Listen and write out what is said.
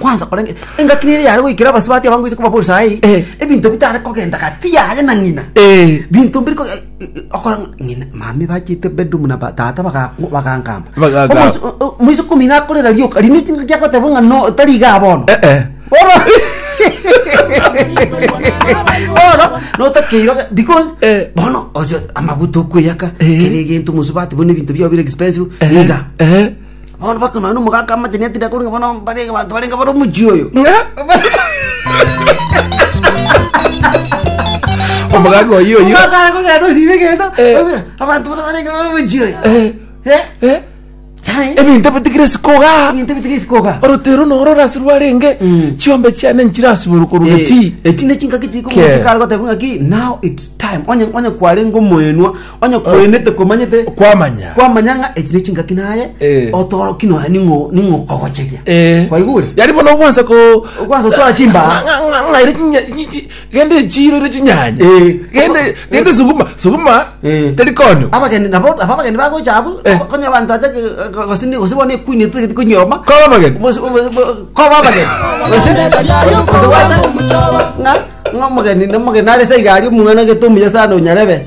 Kwanza korenge engaki nere yare goikera abasubati aba ngoise kobabosa ai Eh. ebinto bitare kogenda gati yaye na ng'ina Eh. binto mbiri ko- eh, eh, okora ng'a ng'ina mama ebachete bedroom na ba- tata baga- bagankamba Bagankamba. Omosi- o- o- moise komina akorera rioka riria ne chingaki agoteba ng'a no tari iga bono Eh, eh. bono bono notakeirwe ga- because Eh. bono oche amaguta okweyaka Eh. kera egento mosubati bono ebinto biao bire expensive Eh, iga eh. Bono baka nonya nomogaka amachani atire akorwa bono bare abanto barenge bare omochie oyo. omogaka oyo oyo Omogaka are kogenda osibe egento. Eh. Abanto bare barenge bare omochie oyo. Eh, Eh? eh, Yaani, ebinto bitigire sikoga ebinto bitige sikoga. orotero noro orasirwe arenge Mm. chiombe chiane nchirasibore korwa Eh, gati eki ne chingaki chiri Ke. komusikara goteba ng'aki now it's time onye onye kwarenge omoenwa Onye kwenete komanyete kwamanya kwamanya ng'a echi nechingaki naye Eh. otoroki nonya ning'o ning'okogocheria Eh. kwaigure yari bono okwansa ko Okwansa gotora chimbaga. Ng'a- ng'a- ng'aire chinya- chi- chi- gende echiro ire chinyanya Eh. gende gende suguma suguma Eh. teri kono abageni nabo nabo abageni bagocha abu Eh. konya abanto aje gosini gosibo ne queen tigiti kunyoma koba mageni Bosi- bo- bo- koba abageni gosini gosibo aje ng'a ng'a omogeni nomogeni are saiga ari omwana gete omuya sana onyarebe